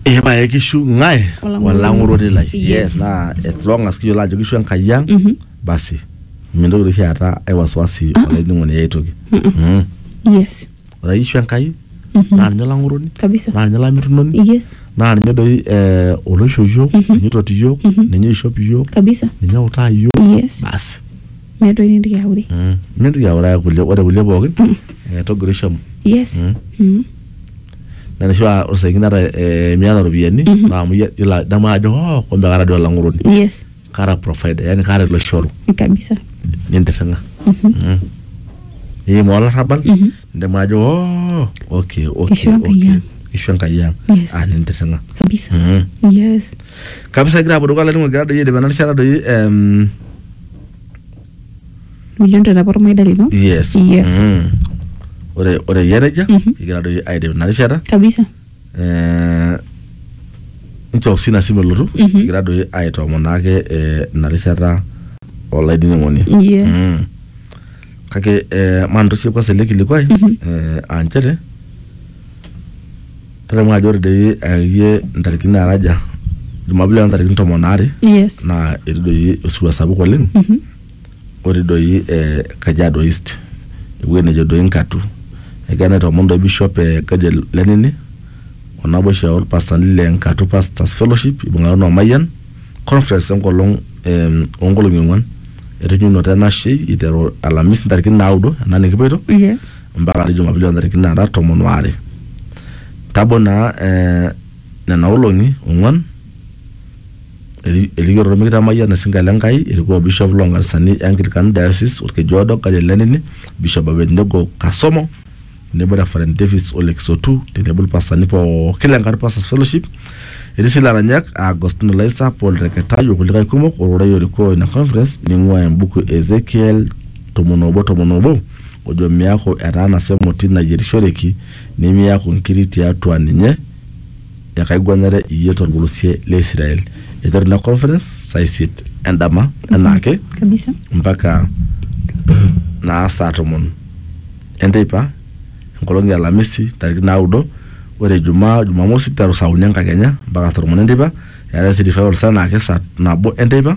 ee pae kishu ng'ae Olang'oroni. olang'oroni lai Yes. naa as long as kiyiolo ajo kishu enkai ang basi mintoki oshi aata ai wasiwasi olainining'oni ai toki Mm. yes ore ake kishu enkai naa ninye olang'oroni kabisa naa ninye olamitunoni yes naa ninye doi eh, oloisho iyiok ninye oitoti iyiok ninye oishop iyiok kabisa ninye outaa iyiok yes basi meeta entoki nintoki aure Mm. mintoki auraya kulie ore kulie pookin eh, togoro ishomo yes Mm. Mm. na nisho aa ore saingine ata eh, miata ropiyiani naa amu iyie- ilo adamu ajo oh kumbe kaata dii olang'uroni yes kaata provider yani kaata ilo shoru kabisa nintirring'a Mm. niim olarrabal Mhm. nidamu ajo oh okay okay Kishu Enkai okay ang. kishu enkai ang Yes. ah nintirring'a kabisa Mm. yes kabisa egira apuo dukuya olainining'oni egira doi aidip ena rishata doi em, mijon te nabo ormaida lino yes Yes. Mhm. ore ore iyie nejia Mhm. egira doi aidip ina rishata kabisa Eh, nchoof sii ina simu elotu Mhm. egira doi aitoomonaake eh, ina rishata olainining'oni yes Mm. kake eh, mantosie kwanza ele kilikuai Mhm. eh, aa nchere tadamu ajo ore doi akeyie ntarikini naara aja jumapili ontarikini tomon aare Yes. naa etii doi osirua sapuk oleng otii doi eh, kajiado east ewueji nejo doi nkatu egira naitoomon doi bishop eh, Gadiel lenini onaboisho orpastani le nkatu pastors fellowship ibung'akino o mayian conference enkolong em, onkolong'i ong'uan etujunoto enashei iteru alamisi ntarikini naudo ena nikipoito Yes. mpaka ade Jumapili oo ntarikini naara tomon o are. Tabo naa eh, nena olong'i ong'uan eri- erikito ormekita Mayian Isinka le Nkai erikoo Bishop loo nkanisani e Anglican Diocese Olkeju Odo Gadiel Lenini, Bishop Abednego Kasomo tenebo Reverend Davis Ole Kisotu tenebo ilpastani pooki le Ngara Pastors Fellowship. Etii sii ilaranyak aa Agostino Laisa, Paul Reketai o kulikae kumok ororei orikoo ina conference neing'uaa embuku e Ezekiel tomon oobo tomon oobo. ojo miaku etaanasa emoti nayierishoreki, nimiaku nkiri tiatua ninye, ekaiguanare iyie tolpolosie le Israel. Eiteru ina conference saa isiet endama enaake kabisa mpaka naa saa tomon enteipa enkolong e alamisi ntarikini naudo ore ijumaa jumamosi nteru saa uni enkakenya mpaka saa tomon enteipa eetae sii revival saa enaake saa nabo enteipa